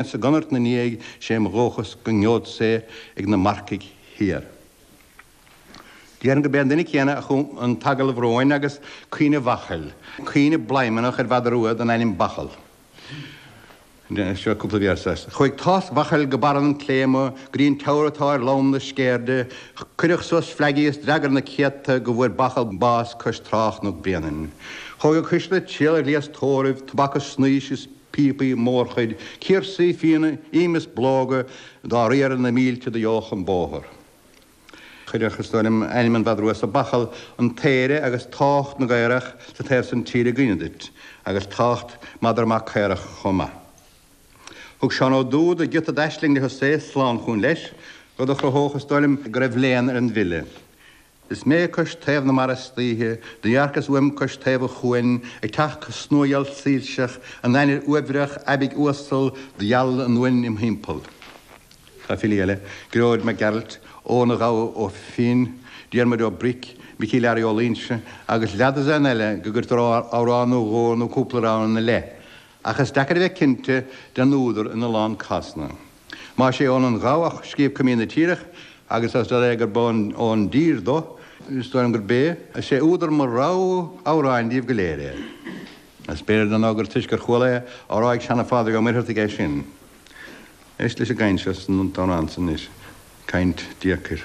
Sa gconairt 'na ndiaidh sé mo dhóchas go ngeod sé ag na marcaigh thiar. Déarfainn go b'é an duine céanna a chum an t-agallamh romhainn agus Caoineadh Bhachail, caoineadh bladhmannach ar mhadra rua den ainm Bachall. Chuaigh tásc Bhachail go barra an clé mo ghrian teamhair atá ar lom na Sceirde, cuireadh suas fleagaí is d'fhreagair na céadta go bhfuair Bachall bás cois trá Chnoc Bréanainn. Chuaigh go Caisle ag triall ar ghléas tórraimh, tobac is snaois is. píopaí, mórchuid cirsaí fíona, im is bológa do riarfadh na mílte do gheobhadh an bóthar. Chuirfeadh, is dóigh liom, ainm an mhadra sa bachall an t-aoire agus tábhacht na gcaorach sa taobh san tíre i gcuimhne duit, agus tábhacht madra maith caorach chomh maith. Thug Seán Ó Dúda giota d'aisling le Husae slán chugainn leis, rud a chruthódh, is dóigh liom, go raibh léann ar an bhfile. Is mé cois taobh na mara istoíche, do dhearcas uaim cois taobh an chuain, ag teacht go snuagheal soilseach, an ainnir uaibhreach aibidh uasal do gheal an uain im thimpeall. Tá filí eile, Gearóid Mac Gearailt, Eoghan a' Ghabha Ó Finn, Diarmuid Ó Bric, Micí Learaí Ó Luínse agus leathdhosaen eile go gcuirtear amhrán nó dhó nó cúpla rann ina leith, ach is deacair a bheith cinnte den údar in a lán cásanna. Más é Eoghan a' Ghabha a scríobh Coimín na Tíre agus is dóigh liom gurb ón, ón dTír dó, is dóigh liom gurb é is é údar mo rogha amhráin díobh go léir é. Is b'fhéidir dar ndó gur toisc gur chuala é á rá ag Seana-Phádraig Ó Muircheartaigh é sin. Éist leis an gcaint seo san amhrán san anois, caint deacair.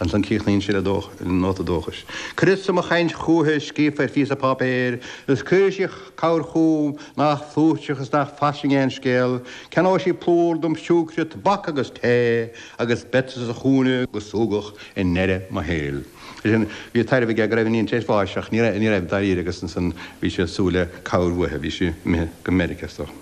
Ansan críochnaíonn sé le dóchas, le nóta dóchais, Cuireas-sa mo chainnt chúithi scríofa ar phíosa páipéir, agus cuirfidh sí cabhair chúm nách flúirseach is nach fairsing aon scéal, ceannóidh sí plúr dom siúicre, tobac agus tae, agus beadsa sa chúinne go súgach i ndeireadh mo shaoil. Ansin bhí taibhreamh aige go raibh a iníon tar éis bháis, ach ní raibh dáiríre, agus ansan bhí sé ag súil le cabhair uaithi, bhí sí imithe go Meiriceá is dócha.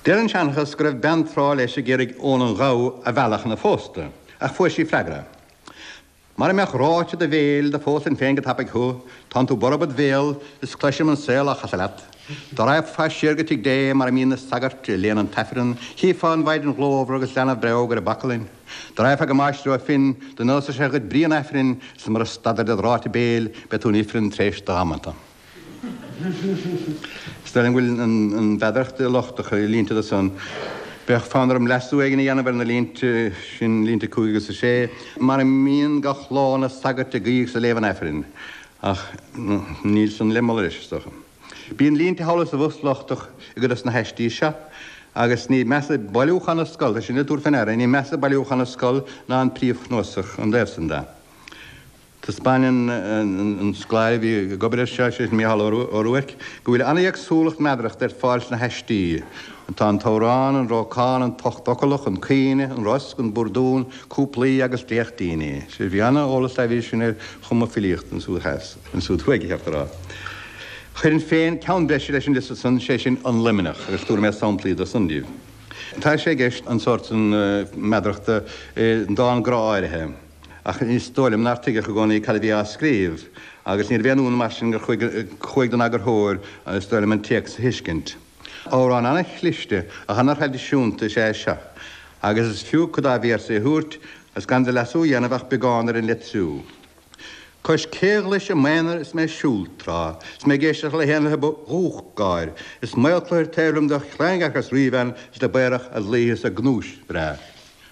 Deir an seanchas go raibh bean tráth leis ag iarraidh Eoghan an Ghabha a mhealladh chun a phósta, ach fuair sí freagra, Mara mbeadh ráite do bhéil, do phósfainn féin go tapaidh thu, tánn tú borb id bhéal is cloisim an saol á chasadh leat. Dá raghfá siar go tigh Dé mar a mbíonn na sagairt ag léamh an tAifreann, chífeá an mhaighdean ghlórmhar agus leanbh breágh ar a baclainn. Dá raghfá go Máistir Ó Finn, do neósfadh sé dhuit brí an Aifrinn, is mura stadfair dod ráite béil, beidh tú in ifreann t'réis do dhamanta. Is dóigh liom go bhfuil an mheadaracht lochtach i línte de san. Bheadh fonn orm leasú éigin a dhéanamh ar na línte sin, línte 5 agus 6, mar a mbíonn gach lá na sagairt ag guí is ag léamh an Aifrinn, ach níl san le moladh anois, is dócha. Bíonn línte thall is abhus lochtach i gcuid dos na haistí seo, agus ní measa bailiúchán na scol, tá sin le tabhairt fé ndeara, ní measa bailiúchán na scol ná an príomhchnuasach, an taobh san de. Taispeáineann an scoláire a bhí ag obair air seo, sé sin Mícheál Ó Ruairc, go bhfuil an-éagsúlacht meadarachta ar fáil sna haistí. Tá an t-amhrán, an rabhcán, an t-ochtfhoclach, an caoineadh, an rosc, an búrdún, cúplaí agus dréachtíní. Bhí an-eolas aibidh sin ar chumadh filíochta ansúd theas, ansúd thuaidh, is ceart a rá. Chuirfinn féin ceann breise leis an liosta san, sé sin An Luimneach, agus tabharfaidh mé samplaí do san daoibh. Tá sé i gceist an sórt san meadarachta i ndán grá áirithe. ach is dóigh liom nár tuigeadh i gcónaí cad a bhí á scríobh, agus níorbh aon ionadh mar sin gur chuaigh don eagarthóir, is dóigh liom, an téacs a thuiscint. Amhrán an-chliste, ach an-thraidisiúnta is ea é seo, agus is fiú cuid dá véarsaí a thabhairt, is gan de leasú a dhéanamh ach beagán ar an litriú. Cois caolghlaise i m'aonar is mé ag siúl tráth, 's mé ag éisteacht le héanlaithe ba dhubhach gáir, is maolchluthar taobh liom do chlaondearcas ríbhean is dob aerach a dlaoithe 's a gnúis bhreá.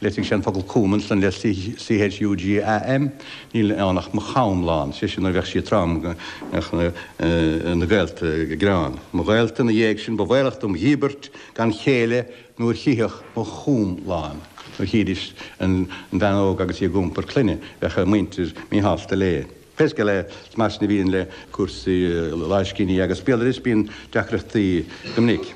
Litrigh sé an focal com ansan le C H U G A M, níl ann ach mo chom lán, sé sin nuair a bheadh sí trom bheadh na gaolta ag gearán. Mo ghaolta ina dhéidh sin ba bhaolach dom dhíbirt gan chéile nuair chífeadh mo chom lán, nuair chídís an bhean óg agus í ag iompar clainne bheadh a muintir míshásta léi. Pé scéal é, mar sin a bhíonn le cúrsaí láimhscríbhinní agus béaloidis, bíonn deacrachtaí go minic,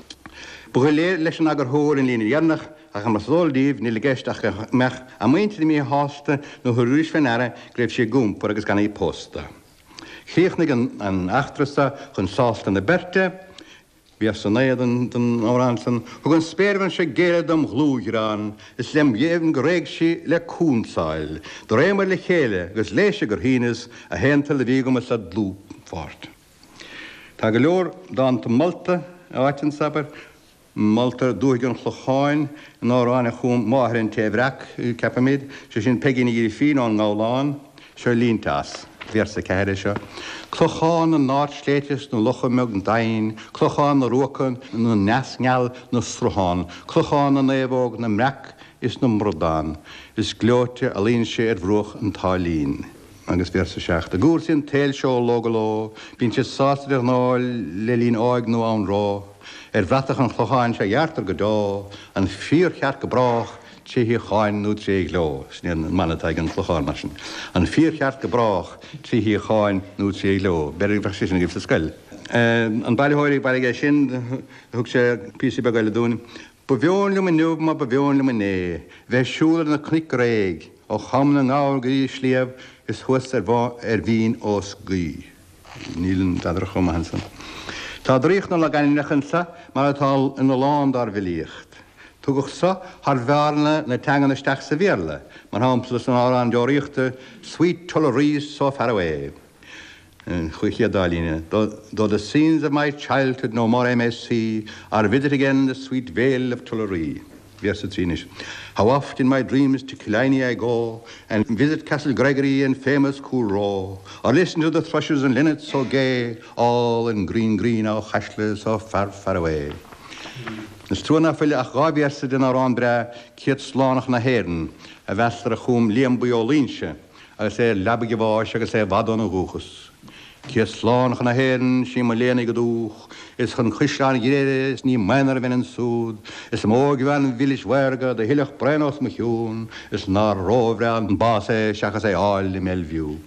ba dhoiléir leis an eagarthóir an líne dheireanach, Ach mar is eol daoibh, níl i gceist ach go mbeadh a muintir míshásta nuair a thabharfaidís fé ndeara go raibh sí ag iompar agus gan í pósta. Chríochnaigh an eachtra so chun sásta na beirte. Véarsa a naoi den amhrán san. Thug an spéirbhean seo géilleadh dom dhlúthghreann, is lem dheimhin go réidh sí le cúnsáil. Do réamair le chéile, agus léise gur shíneas a haontoil do bhí agam is a dlúthpháirt. Tá go leor dánta molta áite anso, abair. Moltar dúthaigh an Chlocháin in amhrán a chum máthair an té a bhreac, ceapaimid, sé sin Peigín Ní Ghrifín ón nGabhlán. Seo línte as, véarsa a ceathair, é seo, Clochán na n-ardshléibhte 's na locha mbeag doimhin, Clochán na ruacan 's na n-eas ngeal 'na sruthán, Clochán na naomhóg, na mbreac is na mbradán, Is gleoite a luíonn sé ar bhruach an tSáilín. Agus véarsa a seacht, I gcúrsaí an tsaoil seo ó ló go ló, Bíonn siad sásta de ghnáth le linn áidh nó anró, Ar bhratach an Chlocháin sea dearctar go deo an fíorcheart go brách, tré shíocháin nó tré ghleo. Sin é an mana atá ag an Chlochán, mar sin, an fíorcheart go brách, tré shíocháin nó tré ghleo. B'fhéidir go mbeadh sé sin agaibh sa scoil. An bailitheoir ag baile aige sin, thug sé píosa beag eile dúinn, Ba mheon liom inniu mar ba mheon liom inné, bheith ag siúl ar na cnoic réidh, ó Chom na nGabhar go dtí an sliabh is thuas ar Bhun ar Bhinn os Gaoith. Níl an mheadaracht chomh maith ansan. Tá draíocht na logainmneacha anso mar atá in a lán dár bhfilíocht. Tugadh so thar bhearna na teangan isteach sa Bhéarla, mar shampla san amhrán deoraíochta Sweet Tullaree so far away, an chéad dá líne, Though the scenes of my childhood no more I may see, Or visit again the sweet vale of Tullaree. Véarsa 3 anois. How oft in my dreams to Killiney I go And visit Castle Gregory and famous Coolroe Or listen to the thrushes and linnets so gay All in green green Aughacasla so far far away Is trua nach bhfuil ach dhá véarsa den amhrán breá Céad Slán chun na hÉireann a mheastar a chum Liam Buí Ó Loingsigh agus é ar leabaidh a bháis agus é i bhfad óna dhúchas. Céad slán chun na hÉireann, sí mo léan í go dúch', is chun Caisleáin Ghriaire is ní im aonar a bheinn ansúd, is mó óigbhean mhilis mhaorga do shilfeadh braon os mo chionn, is nár róbhreá an bás é seachas é 'fháil i mBelle Vue'.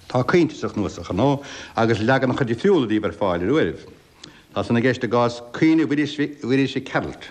Tá caointe sa chnuasach, ar ndóigh, agus leaganacha difriúla díobh ar fáil ar uairibh. Tá san i gceist i gcás 'Caoineadh Mhuiris Mhic Gearailt'.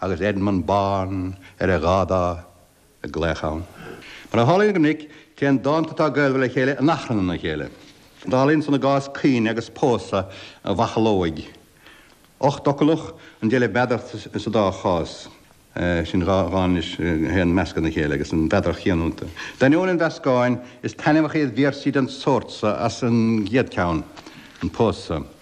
agus Edmund Bán ar a dhá dá ag glaoch ann. Mar a tharlaíonn go minic, téann dánta atá gaolmhar le chéile in achrann ina chéile. Tarlaíonn san i gcás 'Caoineadh agus Pósadh an Bhachalóigh'. Ochtfhoclach an deile mheadaracht sa dá chás sin, dhá dhán anois a théann i measc a chéile agus an mheadaracht chéanna iontu. D'ainneoin an mheascáin, is taitneamhach iad véarsaí den tsórt so as an gcéad cheann, 'An Pósadh'.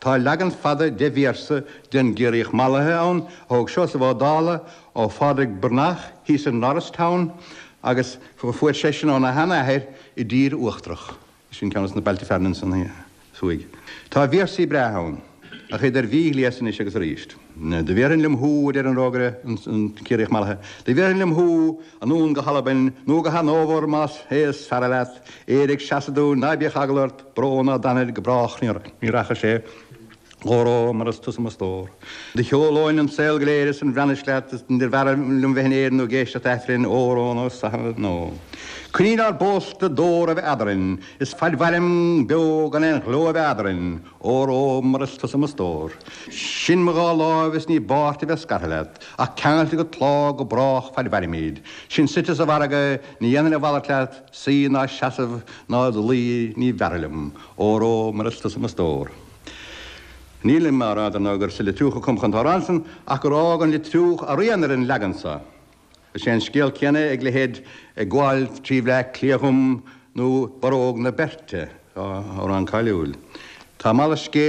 Tá leagan fada deich véarsa den gCiarraíoch Mallaithe ann a thóg Seosamh Ó Dálaigh ó Phádraig Breathnach thíos in Norristown agus a fuair seisean óna shean-athair i dTír Uachtarach. Sin ceann des na bailte fearainn ansan thuaidh. Tá véarsaí breátha ann, ach iad ar mhí-ghléas anois agus arís. Do bhéarfainn liom thú, a deir an rógaire, an Ciarraíoch mallaithe, do bhéarfainn liom thú anonn go hAlbain nó go Hanóbhar más é is fearra leat, Éire ag seasamh dúinn, ná bíodh eagal ort, brón ná danaid go brách ní rachaidh sé óró mar is tusa mo stór. Do shiúlóinn an saol go léir is an Bhreatnais leat, is níor bhfearra liom bheith in Éirinn nó ag éisteacht Aifrinn, óró nó i Sasana Nua, coinníoll ár bpósta d'ór a bheith eadarainn, is faid mhairim beo gan aon ghleo a bheith eadarainn. Óró, mar is tusa mo stór. Sin mo dhá láimh is ní i bpáirt a bheith scartha leat, ach ceangailte go tláth go brách faid mhairimid. Sin suite sa mhargadh, ní dhéanfar malairt leat, suí ná seasamh ná id luí, níor bhfearra liom. Óró, mar is tusa mo stór. Nílim á rá, dar ndóigh, gur sa Leitriúch a cumadh an t-amhrán san, ach gur fhág an Leitriúch a rian ar an leagan so. Is é an scéal céanna ag leithéid 'Ag gabháil trí Bhleá Cliath dhom' nó 'Barróg na Beirte', dhá amhrán cáiliúil. Tá malairt scéil